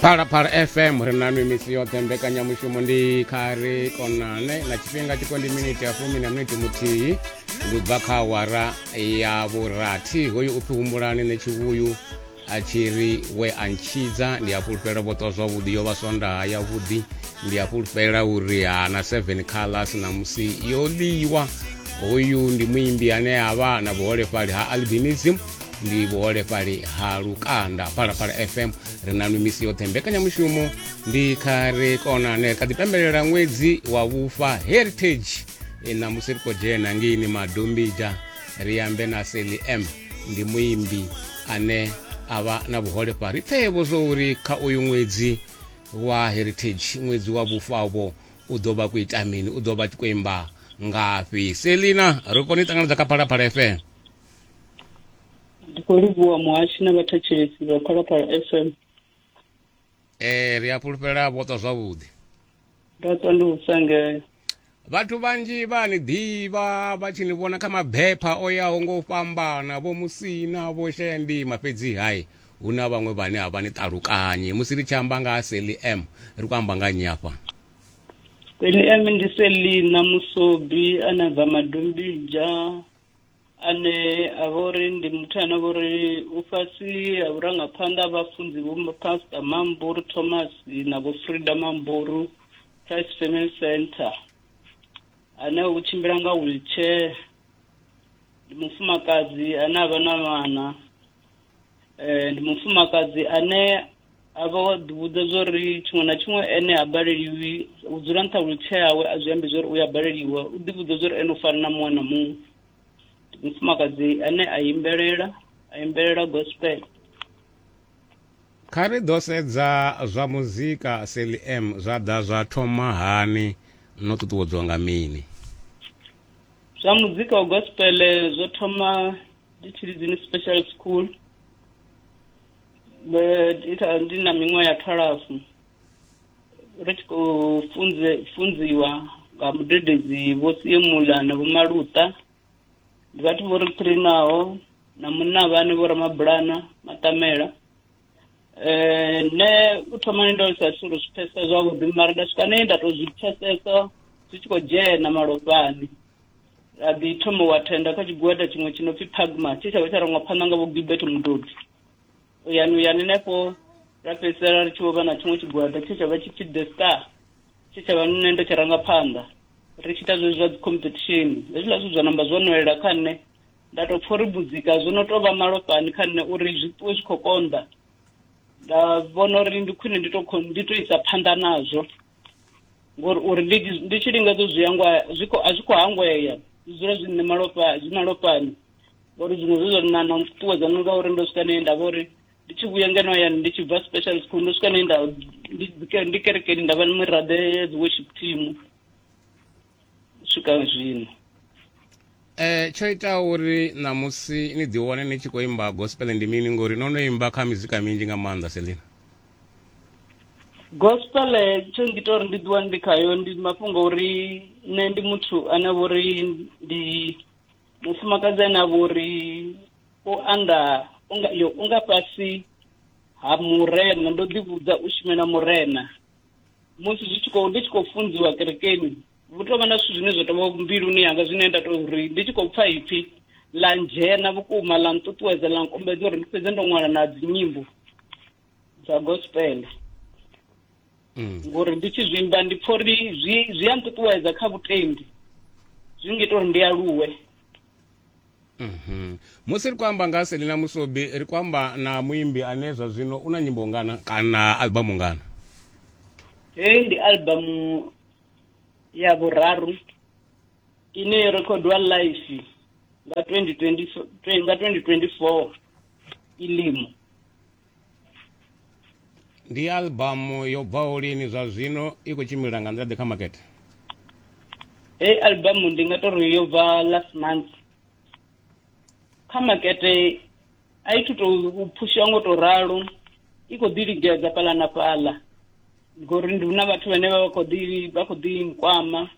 phalaphala fm ri na nwi misi yoṱhe mbekanyamushumo ndi kha ri konane na tshifhinga tshiko ndi miniti ya fumi na miniti muthihi ndi bva kha awara ya vhurathi hoyu u pfi humbulani ne tshivhuyu a tshi ri we a ntshidza ndi a fhulufhela vhoṱwa zwavhuḓi yo vha swondaha yavhuḓi ndi a fhulufhela uri hana seven colors na musi yo ḽiwa hoyu ndi muimbi ane a vha na vhuholefhali ha albinism ndi vhuholefhali ha lukanda phalaphala fm ri na mimisi yoṱhe mbekanyamushumo ndi kha ri konane kha ḓipembelela ṅwedzi wa vhufa heritage e, na musi ri khou dzhena ngeini madombija ri ambe na seli m ndi muimbi ane a vha na vhuholefhali ri pfeevho zwo uri kha uyu ṅwedzi wa heritage ṅwedzi wa vhufavho u ḓo vha khou ita mini u ḓo vha tshi khou imba ngafhi selina ri kone u ṱanganedza kha phalaphala fm ndi khou livhuwa muhashi na vhathetshelesi vha phalaphala fm ee ri a fhulufhela vho ṱwa zwavhuḓi nda ṱwa ndi u sangea vhathu vhanzhi vha ni ḓivha vha tshi ni vhona kha mabepha o yaho ngo u fhambana vho musina vho shaya ndima fhedzi hai hu na vhaṅwe vhane a vha ni ṱalukanyi musi ri tshi amba nga ha seli m ri khou amba nga nnyi afha seli m ndi selina musobi a na bva madombidzha ane a vha uri ndi muthu ane a vha uri u fhasi ha vhurangaphanḓa ha vhafunzi vho pastor mamburu thomas na vho frida mamburu christ family center ane u tshimbila nga wheelchair ndi mufumakadzi ane a vha na vhana eh, ndi mufumakadzi ane a vha wa ḓivhudza zwo ri tshiṅwe na tshiṅwe ene ha baleliwi u dzula nṱha lutshieawe a zwi ambi zwo ri u ya baleliwa u ḓivhudza zwo ri ene u fana na muṅwe na muṅwe ndi mufumakadzi ane a imbelela a imbelela gospel kha ri ḓo sedza zwa muzika seli m zwa ḓa zwa thoma hani no ṱuṱuwedzwa nga mini zwa muzika wa gospel zwo thoma Ditshilidzini Special School ndi na miṅwaha ya thalafu ri tshi khou funze funziwa nga mudededzi vho siemula na vho maluta ndi vhathu vho ri trainaho na munna vhane vho ramabulana maṱamela eh ne u thoma ni ndo sa sulu zwi pfesa zwavhuḓi mara nda swika ne nda to zwi pfesesa zwi tshi khou dzhena malofhani ra ḓi thoma wa thenda kha tshigwada tshiṅwe tshi no pfi pagma tshe tsha vha tsha rangwa phanḓa nga vho gilbert mudodi uyani uyani henefho ra fhedzisela ri tshi vho vha na tshiṅwe tshigwada tshe tsha vha tshi pfi the star tshe tsha vha nṋe ndo tshi ranga phanḓa ri tshi ita zwezwi zwa dzi competition hezwiḽa zwithu zwa namba zwo nwelela kha nṋe Nda tou pfa uri budzika, zwo no tou vha malofhani kha nṋe uri zwi ṱuwe zwi khou konḓa. Nda vhona uri ndi khwine ndi tou ndi tou isa phanḓa nazwo ngori uri ndi ndi tshi lingedza u zwi hangwa zwi khou a zwi khou hangwea zwi dzula zwi nṋe malofha zwi malofhani ngori zwiṅwe zwe zwa na na nṱuṱuwedza ndi ngauri ndo swika ne nda vha uri ndi tshi vhuya ngeno hayani ndi tshi bva special school ndo swika ne nda ndi kerekeni nda vha miraḓo ya dzi worship team u swika zwino Eh tsho ita uri ṋamusi ni ḓiwane ni tshi khou imba gospel ndi mini ngori no no imba kha mizika minzhi nga maanḓa selina gospel tsho ngita uri ndi ḓiwane ndi khayo ndi mafhungo uri nṋe ndi muthu ane vho ri ndi mufumakadzi ane a vho ri o anda unga yo unga fhasi ha murena ndo ḓi vhudza u shumela murena musi zwi tshi khou ndi tshi khou funziwa kerekeni vhu tovha na zwithu zwine zwa tovha mbiluni yanga zwine nda tou ri ndi tshi khou pfa ipfi ḽa ndzhena vhukuma ḽa nṱuṱuwedza ḽa nkombedza uri ndi fhedze ndo ṅwala na dzinyimbo dza gospel mm. ngori ndi tshi zwimba ndi pfha uri zwi zwi a nṱuṱuwedza kha vhutendi zwi ngita uri ndi aluwe Mhm. musi ri khou amba nga ha selina musobi ri khou amba na muimbi ane zwa zwino u na nyimbo ngana kana albamu ngana heyi ndi albamu ya vhuraru ine yo rekhodwa live nga 2024 ilimo ndi albamu yo bvaho lini zwa zwino i khou tshimbila nga nḓila ḓe kha makete hei albamu ndi nga tori yo bva last month kha makete a i thu tou phushiwa ngo to ralo i khou ḓi ligedza fhaḽa na fhaḽa ngori ndi hu na vhathu vhane vha khou ḓi vha khou ḓi nkwama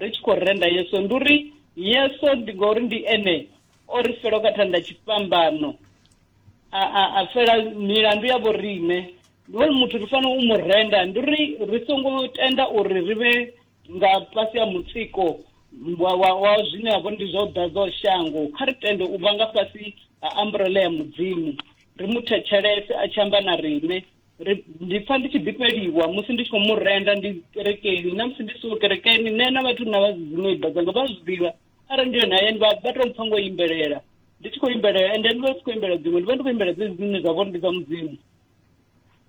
ri tshi khou renda yeso ndi uri yeso ndi ngori ndi ene o ri fela ka thanda tshifhambano a a a fela milandu ya vho riṋe ndi uri muthu ri fanela u mu renda ndi uri ri songo tenda uri ri vhe nga fhasi ya mutsiko wa wa wa zwine ha vho ndi zwa u ḓadza shango kha ri tende u vha nga fhasi ha umbrella ya mudzimu ri mu thetshelese a tshi amba na riṋe Ri- ndi pfa ndi tshi ḓifheliwa musi ndi tshi khou mu renda ndi kerekeni na musi ndi siho kerekeni nṋe na vhathu na vha dziṅwe ibba dzanga vha zwi ḓivha arali ndi yone hayani vha vha tou mpfa ngo imbelela ndi tshi khou imbelela ende ndi vha ndi tshi khou imbelela dziṅwe ndi vha ndi khou imbelela dzedzi dzine dza vhori ndi dza mudzimu